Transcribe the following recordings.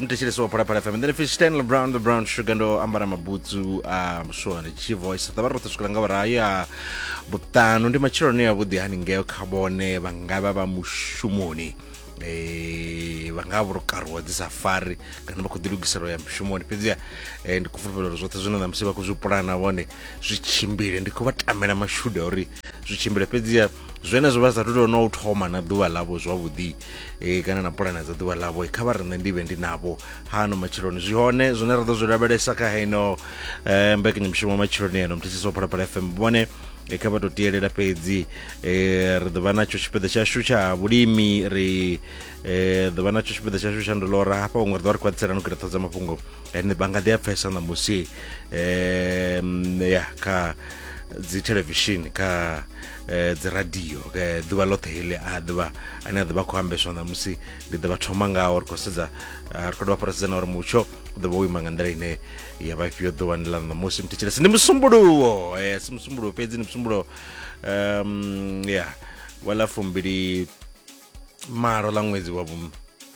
muthetsheleso wa phalaphala fm then if it's stanley brown the brown sugar ndo ambara mabutsu a muswa ndi chi voice ḓavha ri roṱhe swikela nga vhurayi a vhuṱanu ndi matsheloni a vhuḓi hani ngeo kha vhone vha nga vha vha mushumoni eh vha nga vha vho karuwa dzi safari kana vha khou ḓilugisela u ya mushumoni fhedziha eh, ndi khou fulufhela uri zwoṱhe zwine ṋamusi vha khou zwi pulana vhone zwi tshimbile ndi khou vha tamela mashudu a uri zwi tshimbile fhedziha zwenezwo vha sathu tou no u thoma na ḓuvha ḽavho zwavhuḓi e, kana na pulane dza ḓuvha ḽavho kha vha riṋe ndi vhe ndi navho hano matshiloni zwi hone zwine ra ḓo zwi lavhelesa kha heino eh, mbekanyamushumo matshiloni eno mthetshiso wa phalaphala fm vhone e, kha vha tou tielela fhedzi e, ri ḓo vha natsho tshipiḓa tshashu tsha vhulimi ri e, ḓo vha natsho tshipiḓa tshashu tsha ndolora hafha huṅwe ri ḓo ri khwaṱhisela no kira ṱhodza mafhungo ene vha nga ḓi a pfesa ṋamusi um ya kha dzi thelevishini kha eh, dziradio eh, ḓuvha ḽoṱhe heḽi a ḓivha ane a ḓivha khou ambeswa ṋamusi ndi ḓo vha thoma ngaho ri khou sedza ah, ri khou dovha fara sedza na uri mutsho u ḓo vha wo ima nga nḓila ine ya vha ifhio ḓuvhani ḽa ṋamusi mthetshelesi ndi musumbuluwo eh, si musumbuluwo fhedzi ndi musumbuluwo um ya wa ḽa fumbili malo ḽa ṅwedzi wa vhu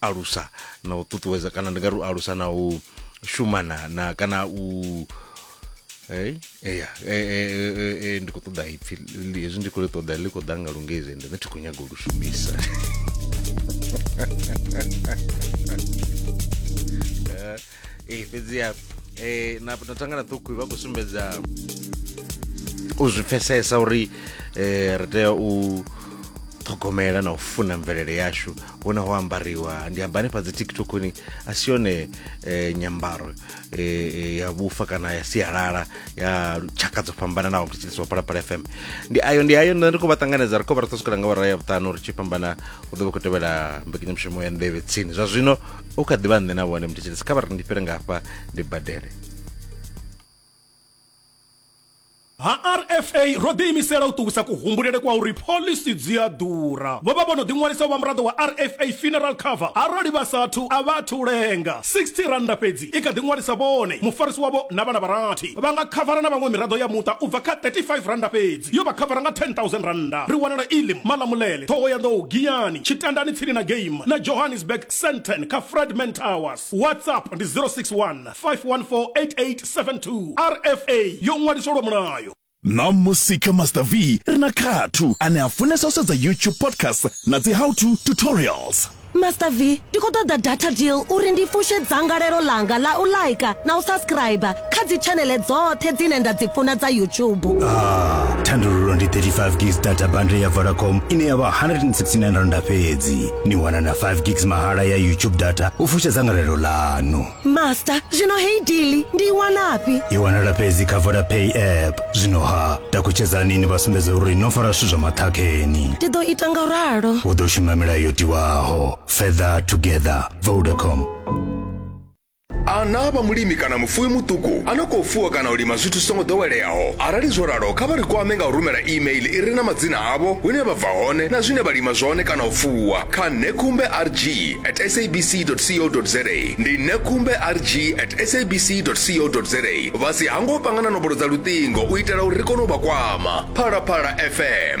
alusa na u ṱuṱuwedza kana ndi nga ri u alusa na u shumana na kana u Hey, eya e, e, e, e, ndi khou ṱoḓa ipfi li- hezwi ndi khou ḽi ṱoḓa ḽi khou ḓa nga lungezi ende nṋe thi khou nyaga u lu shumisa ee fhedziha eh, na na thangana ṱhukhu vha khou sumbedza u zwi pfesesa uri eh, ri tea u ṱhogomela na u funa mvelele yashu hune ho ambariwa ndi amba hanefha dzi tiktokoni a si yone eh, nyambaro eh, eh, ya vhufa kana ya sialala ya tshaka dzo fhambananaho ndi tshilisa wa phalaphala fm ndi ayo ndi ayo nṋe ndi khou vha ṱanganedza ri khou vha ri tou swikela nga vhara ya vhuṱanu ri tshi fhambana u ḓo vha khou tevhela mbekanyamushumo ya nḓevhe tsini zwa zwino u kha ḓivha nṋe na vhone muthetshelesi kha vha ri ndi fhire ngafha ndi badele ha rfa ro ḓiimisela u ṱuwisa kuhumbulele kwa uri phoḽisi dzi a ḓura vho vha vho no ḓiṅwalisa u vha muraḓo wa rfa funeral cover arali vha sathu a vha athu lenga 60 rannda fhedzi i kha ḓiṅwalisa vhone mufarisi wavho na vhana vharathi vha nga khavara na vhaṅwe miraḓo ya muṱa u bva kha 35 rannda fhedzi yo vha khavara nga 10000 rannda ri wanala ilim malamulele ṱhohoyanḓou giyani tshitandani tsini na game na johannesburg senten kha fredman towers whatsapp ndi 061 5148872 rfa yo ṅwaliswa lwa mulayo na musika master v ri na khathu ane a funesa u sedza youtube podcast na dzi how to tutorials master v ndi khou ṱoḓa data deal uri ndi fushe dzangalelo langa la u laika na u subscribe kha dzitshanele dzoṱhe dzine nda dzi funa dza youtube ah, thandululo ndi 35 gis data bundle ya vodacom ine ya vha 169 randa fhedzi ni wana na 5 gigs mahala ya youtube data u fusha dzangalelo ḽanu master zwino heyi dili ndi i wanafhi i wanala fhedzi kha vodapay app zwino ha takutshedzani ni vha sumbedza uri no fara zwithu zwa maṱhakheni ndi ḓo ita nga u ralo u ḓo shuma milayo yo tiwaho further together vodacom A na vha mulimi kana mufuwi muṱuku a no khou fuwa kana u lima zwithu zwi songo ḓoweleaho? Arali zwo ralo, kha vha ri kwame nga u rumela e-mail i re na madzina avho, hune vha bva hone na zwine vha lima zwone kana u fuwa kha nekumberg@sabc.co.za. Ndi nekumberg@sabc.co.za. Vha si hangwe u panga na nomboro dza luṱingo u itela uri ri kone u vha kwama. Phalaphala FM.